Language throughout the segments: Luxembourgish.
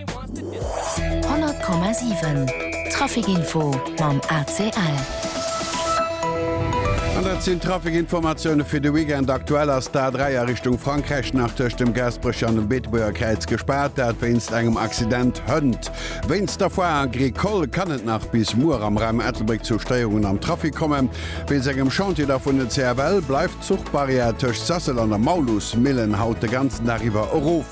100,7 Trafic Info mam ACL. An dat sinn d'Trafic-Informatioune fir de Weekend. Aktuell ass d'A3 a Richtung Frankräich nach tëscht dem Gaasperech an dem Beetebuerger Kräiz gespaart, dat wéinst engem Accident. Hënt. Wéinst der Foire Agricole kann et nach bis muer am Raum Ettelbréck zu Stéierungen am Trafic kommen. Wéinst engem Chantier da vun den CFL bleift d'Zuchbarrière tëscht Sasel an der Maulusmillen haut de ganzen Dag iwwer erof.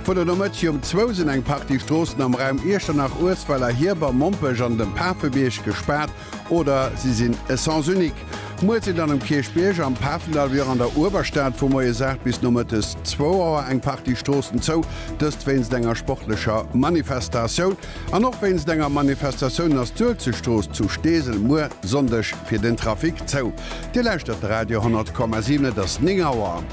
Vun der Nomëtti um zwou sinn eng Partie Stroossen am Raum Iechternach, Uesweller, Hierber, Mompech an dem Pafebierg gespaart oder si sinn e Sens unique. Muer sinn dann um Kierchbierg, am Pafendall wéi och an der Uewerstad vu moies 8 bis nomëttes zwou Auer eng Partie Stroossen zou, dëst wéinst enger sportlecher Manifestatioun. An och wéinst enger Manifestatioun ass d'Uelzechtstrooss zu Steesel muer Sonndeg fir den Trafic zou. Dir lauschtert de Radio 100,7, et ass 9 Auer.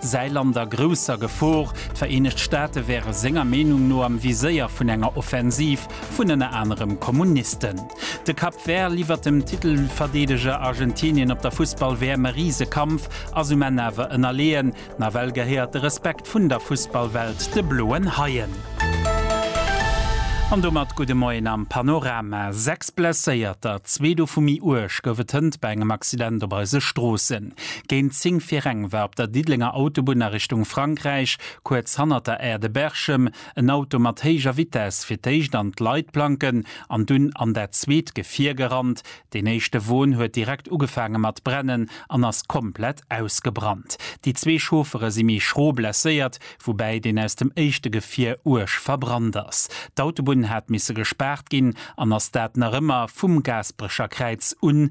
Säi Land a grousser Gefor. D'Vereenegt Staate wäre senger Meenung no am Viséier vun enger Offensiv vun ënner anerem Kommunisten. De Cap Vert liwwert dem Titelverdeedeger Argentinien op der Fussball-WM e rise Kampf, ass um Enn awer ënnerleeën. Nawell gehéiert de Respekt vun der Fussballwelt de Bloen Haien. An domat gudde Moien am Panorama. Sechs Blesséierter, zwee dovu méi uerg, gouf et hënt bei engem Accident op eise Stroossen. Géint 10 vir eng war op der Diddelenger Autobunn a Richtung Frankräich, kuerz hannert der Aire de Berchem, en Auto mat héijer Vitess fir d'éischt an d'Leitplanken an dunn an dat zweet Gefier gerannt. Deen éischte Won huet direkt ugefaange mat brennen an ass komplett ausgebrannt. Déi zwee Chauffere si méi schro blesséiert, woubäi deen aus dem éischte Gefier uerg verbrannt ass. D'Autobunn hat misse gespaart ginn an ass dat nach ëmmer vum Gaasperecher Kräiz un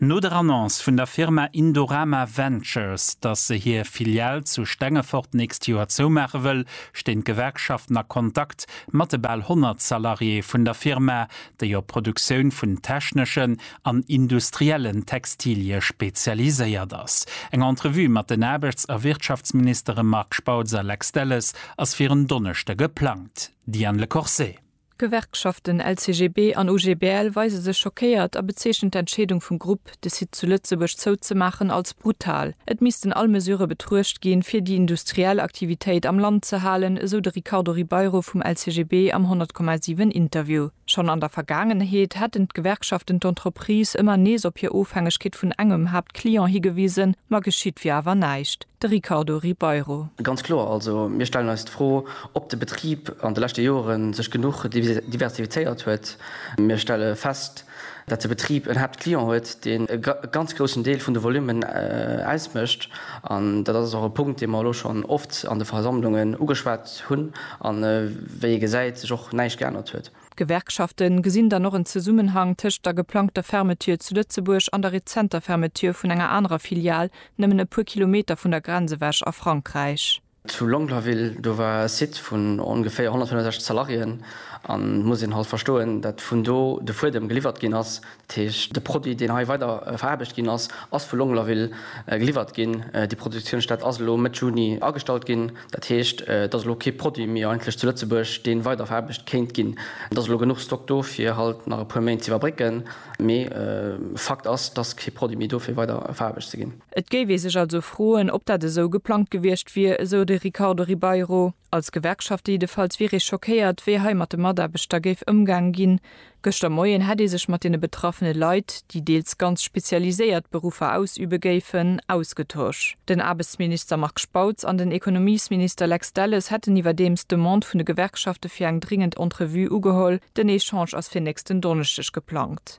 No der Annonce vun der Firma Indorama Ventures, dass se hir Filial zu Stengefort d'nächst Joer zoumaache wëll, stinn d'Gewerkschaften a Kontakt mat de bal 100 Salariéeë vun der Firma, déi op d'Produktioun vun techneschen an industriellen Textilie spezialiséiert ass. Eng Entrevue mat den Aarbechts a Wirtschaftsministere Marc Spautz a Lex Delles ass fir en Donneschde geplangt. Diane Lecourcet. D'Gewerkschaften LCGB an OGBL weise sech schockéiert a bezeechnen d'Entscheedung vum Grupp, de Site zu Lëtzebuerg zouzemaachen, als brutal. Et missten all Mesurë betruecht ginn, fir déi industriell Aktivitéit am Land ze halen, esou de Ricardo Ribeiro vum LCGB am 100,7 Interview. Schonn an der Vergaangenheet hätten d'Gewerkschaften d'Entreprise ëmmer nees op hir Ofhängegkeet vun engem Haaptclient higewisen, ma geschitt wier awer näischt. De Ricardo Ribeiro. Ganz kloer also, mir stellen eis d'Fro, ob de Betrib an de leschte Jore sech genuch diversifizéiert huet. Mir stelle fest, datt de Betrib en Haaptclient huet, deen e ganz groussen Deel vun de Volummen ausmécht. An dat ass och e Punkt, dee mer elo schonn oft an de Versammlungen ugeschwat hunn a wéi ee gesäit, sech och näischt geännert huet. D'Gewerkschafte gesinn dann och en Zesummenhang tëscht der geplangter Fermeture zu Lëtzebuerg an der rezenter Fermeture vun enger anerer Filial nëmmen e puer Kilometer vun der Grenz ewech a Frankräich. Zu Longlaville, do war e Site vun ongeféier 165 Salariéen an et muss een halt verstoen, datt vun do de Fuedem geliwwert ginn ass. Dat heescht, de Produit, deen hei weider veraarbecht ginn ass, ass vu Longlaville geliwwert ginn. Déi Produktiounsstätt ass elo Mëtt Juni agestallt ginn. Dat heescht, et ass elo kee Produit méi eigentlech zu Lëtzebuerg, dee weider veraarbecht kéint ginn. Et ass elo genuch Stock do, fir halt nach e puer Méint ze iwwerbrécken, mee Fakt ass, et ass kee Produit méi do, fir weider veraarbecht ze ginn. Et géif ee sech also froen, ob dat esou geplangt gewiescht wier, esou de Ricardo Ribeiro. Als Gewerkschaft jiddefalls wier ee schockéiert, wéi hei mat de Mataarbechter géif ëmgaang ginn. Gëschter Moien hätt ee sech mat deene betraffene Leit, déi deels ganz spezialiséiert Beruffer ausübe géifen, ausgetosch. Den Aarbechtsminister Marc Spautz an den Ekonomiesminister Lex Delles hätten iwwerdeems d'Demande vun de Gewerkschafte fir eng dringend Entrevue ugeholl. Den Echange ass fir nächsten Donneschdeg geplangt.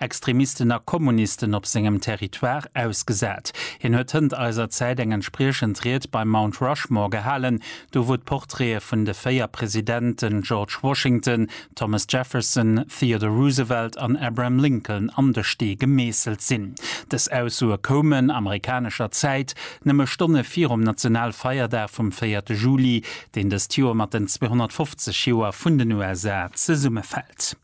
Extremisten a Kommunisten op sengem Territoire ausgesat. Hien huet hënt eiser Zäit eng entspriechend Ried beim Mount Rushmore gehalen, do wou d'Portraite vun de véier Presidenten George Washington, Thomas Jefferson, Theodore Roosevelt an Abraham Lincoln an de Stee gemeesselt sinn. Dës Aussoe koumen, amerikanescher Zäit, nëmme Stonne virum Nationalfeierdag vum véierte Juli, deen dëst Joer mat den 250 Joer vun den USA zesummefält.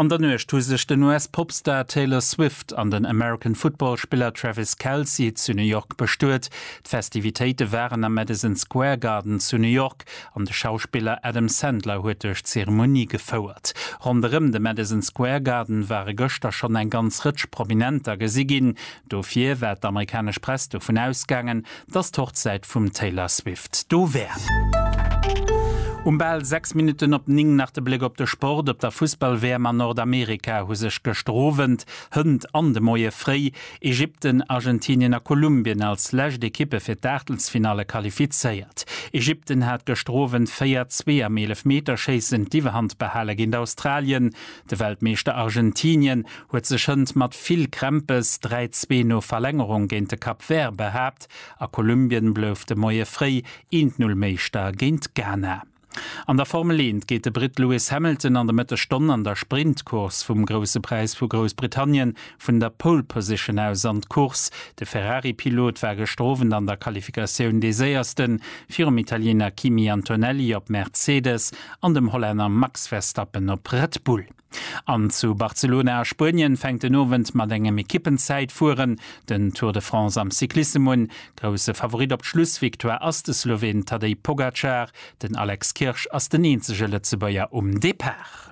An der Nuecht hu sech den US-Popstar Taylor Swift an den American Football-Spiller Travis Kelce zu New York bestuet. D'Festivitéite waren am Madison Square Garden zu New York an de Schauspiller Adam Sandler huet duerch d'Zeremonie gefouert. Ronderëm de Madison Square Garden ware gëschter schonn eng ganz Rëtsch Prominenter gesi ginn. Dofir war d'amerikanesch Press dovun ausgaangen, dass d'Hochzäit vum Taylor Swift do wär. Um bal 6 Minutten op 9 nach de Bléck op de Sport. Op der Fussball-WM an Nordamerika hu sech gëschter Owend, hënt an de Moie fréi Ägypten, Argentinien a Kolumbien als lescht Ekippe fir d'Aachtelsfinalle qualifizéiert. Ägypten hat gëschter Owend 4, 2 am Eelefmeterschéissen d'Iwwerhand behalen géint Australien. De Weltmeeschter Argentinien huet sech hënt mat vill Krämpes 3, 2 no Verlängerung géint de Cap Vert behaapt a Kolumbien blouf de Moie fréi 1, 0 Meeschter géint Ghana. An der Formel 1 geet de Britt Lewis Hamilton an de Mëttesstonn an der Sprintcourse vum Grousse Präis vu Groussbritannien vun der Pole Position aus an d'Course. De Ferrari-Pilot war gëschter Owend an der Qualifikatioun dee Séiersten, virum Italiener Kimi Antonelli op Mercedes an dem Hollänner Max Verstappen op Red Bull. An zu Barcelona a Spuenien fänkt den Owend mat engem Ekippenzäitfueren den Tour de France am Cyclissem un. Grousse Favorit op d'Schlussvictoire ass de Sloween Tadej Pogacar, den Alex Kirsch ass den eenzege Lëtzebuerger um Depart.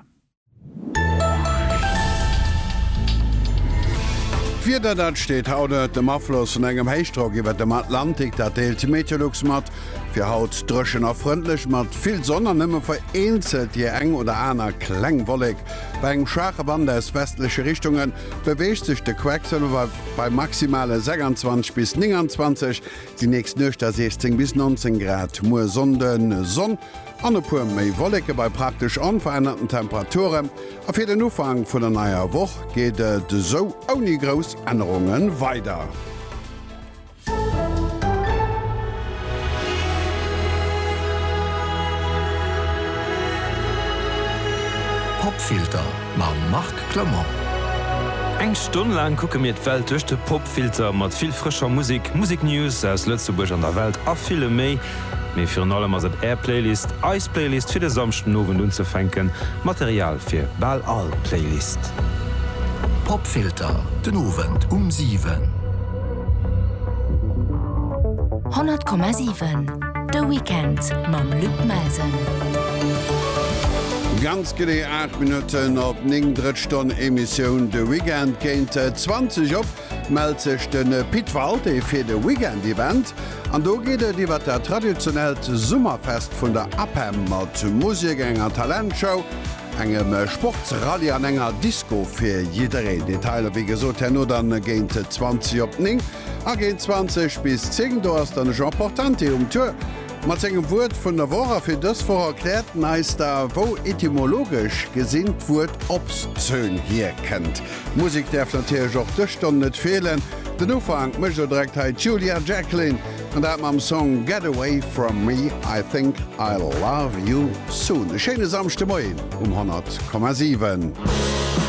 D'Wieder, dat steet haut ënnert dem Afloss vun engem Héichdrock iwwert dem Atlantik, dat deelt d'Meteolux mat. Fir haut dréchen a frëndlech mat vill Sonn an nëmme vereenzelt déi eng oder aner kleng Wollek. Bei engem schwaache Wand aus westleche Richtunge beweegt sech de Quecksëlwer bei maximale 26 bis 29, déi nächst Nuecht da 16 bis 19 Grad. Muer Sonnden, Sonn. An e puer méi Wolleke bei praktesch onverännerten Temperature a fir den Ufank vun der neier Woch geet et esou ouni grouss Ännerunge weider. Popfilter mam Marc Clement. Eng Stonn laang kucke mir d'Welt duerch de Popfilter, mat vill frëscher Musek, Museknews aus Lëtzebuerg an der Welt a villem méi. mee virun allem ass et Är Playlist, eis Playlist fir de Samschdenowend unzefänken, Material fir bal all Playlist. Popfilter, den Owend um 7. 100,7 De Weekend mam Luc Melsen. Ganz genee 8 Minutten op 9, drëtt Stonn Emissioun de Weekend géint 20 op. Mellt sech de Pit Walté fir de Weekend Event an do geet et iwwer dat traditionellt Summerfest vun der APEM mat Musek, enger Talentshow, engem Sportsrallye an enger Disco fir jiddereen. Detailer wéi gesot herno dann géint 20 op 9 a géint 20 bis 10. Do ass dann Jean Portante um Tour mat sengem Wuert vun der Woch a fir dës Woch erkläert en eis da wou etymologesch gesinn d'Wuert Obszön hierkënnt. Musek däerf natierlech och dës Stonn net feelen. Den Ufank mécht elo direkt hei d'Julia Jacklin, an dat mam Song Get Away From Me, I Think I'll Love You Soon. E schéine Samschdemoien um 100,7.